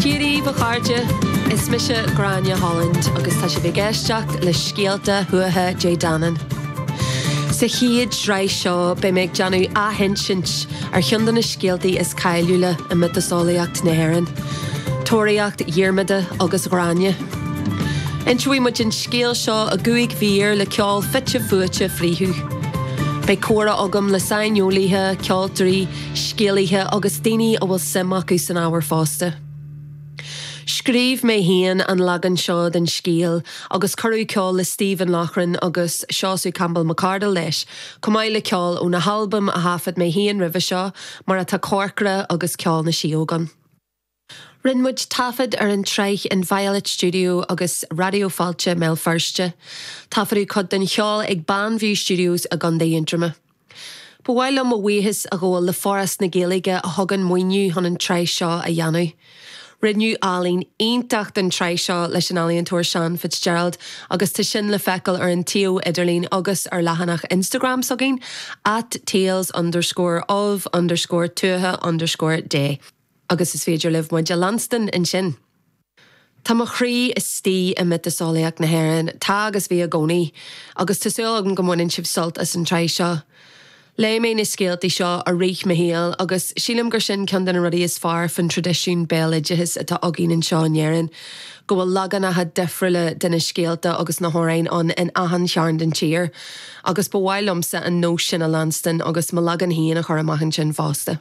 Cé raibh, mo chairde, Is mise Gráinne Holland agus tá sibh ag éisteacht le Scéalta Thuatha Dé Danann. Sa chéad sraith seo beidh mé ag déanamh athinsint ar cheann de na scéaltaí is cáiliúla i miotaseolaíocht na hÉireann, Tóraíocht Dhiarmada agus Ghráinne. Inseoidh muid an scéal seo i gcúig mhír le ceol fite fuaite fríothu. Beidh comhrá agam le saineolaithe, ceoltóirí, scéalaithe agus daoine a bhfuil suim acu san ábhar fosta. Scríobh mé féin an leagan seo den scéal agus cuireadh ceol le Stephen Loughran agus Seosamh Campbell McArdle leis, chomh maith le ceol ó na halbaim a thaifead mé féin roimhe seo, mar atá Corcra agus Ceol na Síóg ann. Rinne muid taifead ar an tsraith in Violet Studio agus Raidió Fáilte i mBéal Feirste. Taifeadadh cuid den cheol ag Banview Studios i gContae Aontroma. Ba mhaith liom mo bhuíochas a ghabháil le Foras na Gaeilge a thug an maoiniú chun an tsraith seo a dhéanamh. Rinneadh ealaín iontach don tsraith seo leis an ealaíontóir Sean Fitzgerald agus tá sin le feiceáil ar an tsuíomh idirlín agus ar leathanach Instagram s'againn at tales underscore of underscore tuatha underscore dé. Agus is féidir libh muid a leanstan ansin. Tá mo chroí istigh i miotaseolaíocht na hÉireann, tá agus bhí i gcónaí, agus tá súil agam go mbaineann sibh sult as an tsraith seo. Léigh mé na scéaltaí seo i rith mo shaoil, agus sílim gur sin ceann de na rudaí is fearr faoin traidisiún béaloideachais atá againn anseo in Éirinn, go bhfuil leaganacha difriúla de na scéalta agus na hamhráin ann in achan chearn den tír, agus ba mhaith liomsa an nós sin a leanstan agus mo leagan féin a chur amach ansin fosta.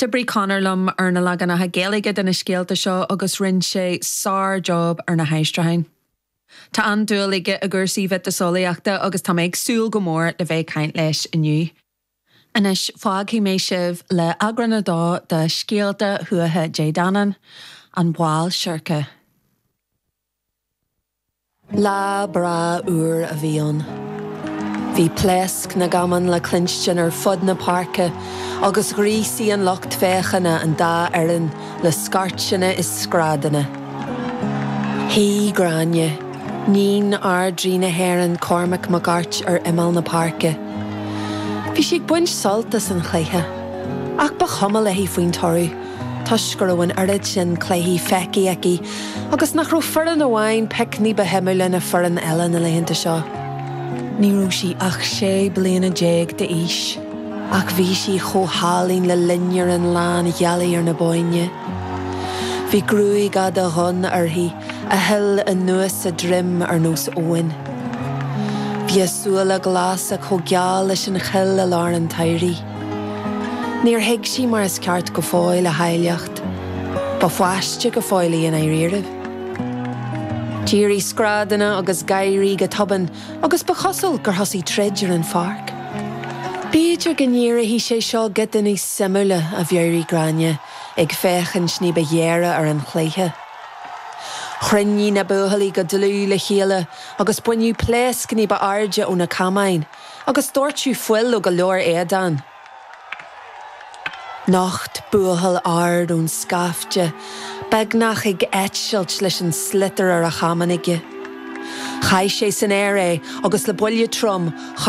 D'oibrigh Conor liom ar na leaganacha Gaeilge de na scéalta seo agus rinne sé sár-job ar na haistriúcháin. Tá an-dúil aige i gcúrsaí miotaseolaíochta agus tá mé ag súil go mór le bheith ag caint leis inniu. Anois, fágfaidh mé sibh le Eagrán 2 de Scéalta Thuatha Dé Danann, An Ball Seirce. Lá breá úr a bhí ann. Bhí pléasc na gcamán le cluinstin ar fud na páirce agus ghríosaigh an lucht féachana an dá fhoireann le scairteanna is screadanna. Shuigh Gráinne, níon Ardrí na hÉireann, Cormac mac Airt, ar imeall na páirce. Bhí sí ag baint sult as an chluiche, ach ba chuma léi faoin toradh. toisc go raibh an oiread sin cluichí feicthe aici agus nach raibh foireann amháin pioc ní ba shuimiúla ná foireann eile na laethanta seo. Ní raibh sí ach sé bliana déag d'aois ach bhí sí chomh hálainn le loinnir na lánghealaí ar an Bhóinn. Bhí gruaig fhada dhonn uirthi a shil anuas a droim ar nós abhann. Bhí a súile glasa chomh geal leis an choill i lár an tsamhraidh. Níor thuig sí mar is ceart go fóill a háilleacht ba pháiste go fóill í i ndáiríribh. D'éirigh screadanna agus gáirí go tobann agus ba chosúil gur thosaigh troid ar an pháirc. B'fhéidir go n-éireoidh sé seo giota níos suimiúla, a mheabhraigh Gráinne, ag féachaint ní ba ghéire ar an chluiche. Chruinnigh na buachaillí go dlúth le chéile agus baineadh pléasc ní ba airde ó na camáin Agus doirteadh fuil ó go leor éadan. Nocht buachaill ard ón scaifte, beagnach ag eitilt leis an sliotar ar a chamán aige. Chaith sé san aer é agus le buille trom,